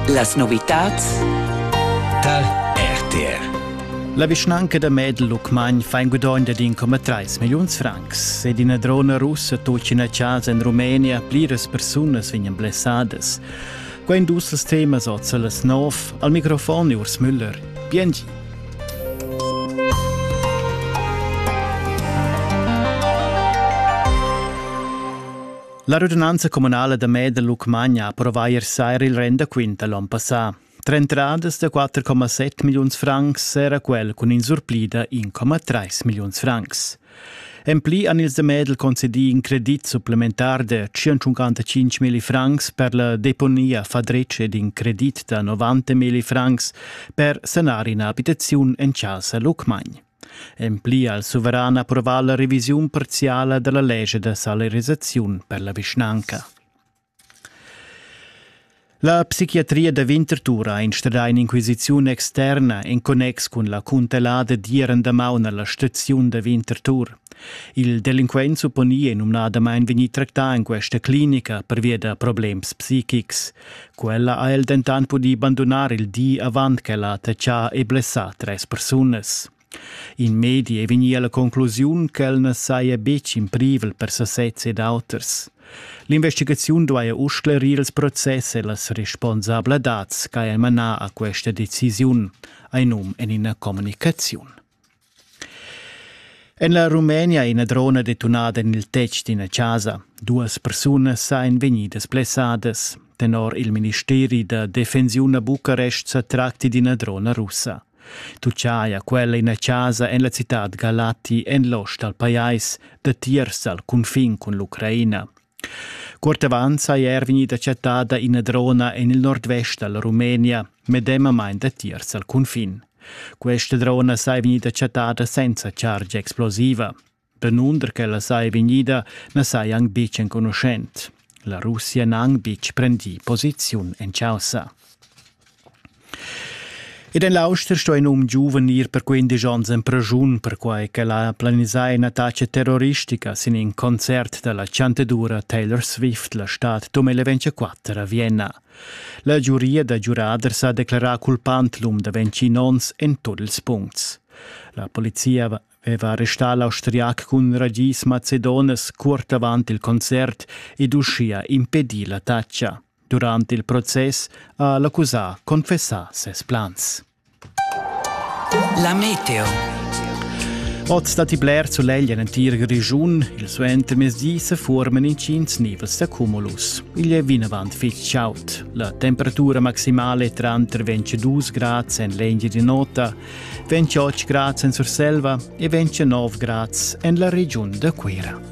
Las novitads Tal RTR La vischnanca da Medel Lucmagn fa in gudogn da 1,3 milliuns francs ed ina drona russa tut ina casa en Rumenia, pliras persunas vegnan blessadas. Quai en dus els temas oz las nov. Al microfon Urs Müller. Biengi. La radunanza communala da Med da Lucmagna ha approvà ier saira il rendaquint da l'onn passà. Tre entradas da 4,7 milliuns francs era quel cun in surpli da 1,3 milliuns francs. En pli han ils da Medel concedì in credit supplementar de 155 mili francs per la deponia fadretsch ed in credit da 90 mili francs per sanar ina abitaziun en casa Lucmagn. En pli ha il suveran approvà la revisiun parziala da la lescha da salarisaziun per la vischnanca. La psichiatria da Winterthur ha instradà in'inquisiziun externa en connex cun la cuntelada d'ieren damaun alla staziun da Winterthur. Il delinquent supponi è numnadamain vegnì tractà en questa clinica pervia da problems psichics. Quella ha el dentant pudì bandunar il di avant ch'ella ha tetschà e blessà tres persunas. In medi è vegnì a la conclusiun ch'el na saja betg in privel per sasez ed auters. L'investigaziun duaja uss sclerir ils process e las responsabladads ch'haja manà a questa decisiun, hai num en ina communicaziun. En la Rumenia è ina drona detunada en il tetg d'ina chasa. Duas persunas èn vegnidas blessadas. Tenor il ministeri da defensiun a Bucarest sa tracti d'ina drona russa. Tucciaia quella ina chasa en la citad Galati en l'ost dal pajais, datiers dal cunfin cun l'Ucraina. Cuort avant sei er vegnida chattada ina drona en il nordvest dalla Rumenia, medemamain datiers al cunfin. Questa drona sei vegnida chattada senza chargia explosiva. Danunder ch'ella sei vegnida na sei anc betg enconuschent. La Russia n'ha anc betg prendì posiziun en chaussa. Ed en l'auster sto in um giuven ir per quindesch onns en praschun, perquai ch'el ha planisà in'attacca terroristica sin in concert da la chantadura Taylor Swift la stad dom 24 a Vienna. La giuria da giuraders ha declarà culpant l'um da 21 onns en tut ils puncts. La polizia aveva arrestà l'austriac cun ragis macedonas curt avant il concert ed uschia impedì l'attacca. Durant il process ha l'accusà confessà ses plans. La meteo. Oz datti bler sulegl en l'entir Grischun. Il suentermezdi se forman intgins nivels da cumulus. Igl è vinavant fitg chaud. La temperatura maximale è tranter 22 grads en l'Engia di Nota, 28 grads en Surselva e 29 grads en la regiun da Cuira.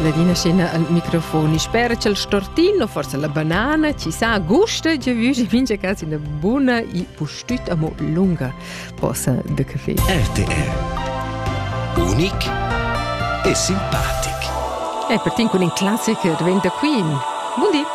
Ladina scena al microfon. Spera c'è il stortino, forse la banana, ci sa gusta, già vu, ci vince casi una buona e pustüta mo lunga posa de caffè. RTR. Unic e simpatic. E per tin con in classic diventa Queen. Buon dì.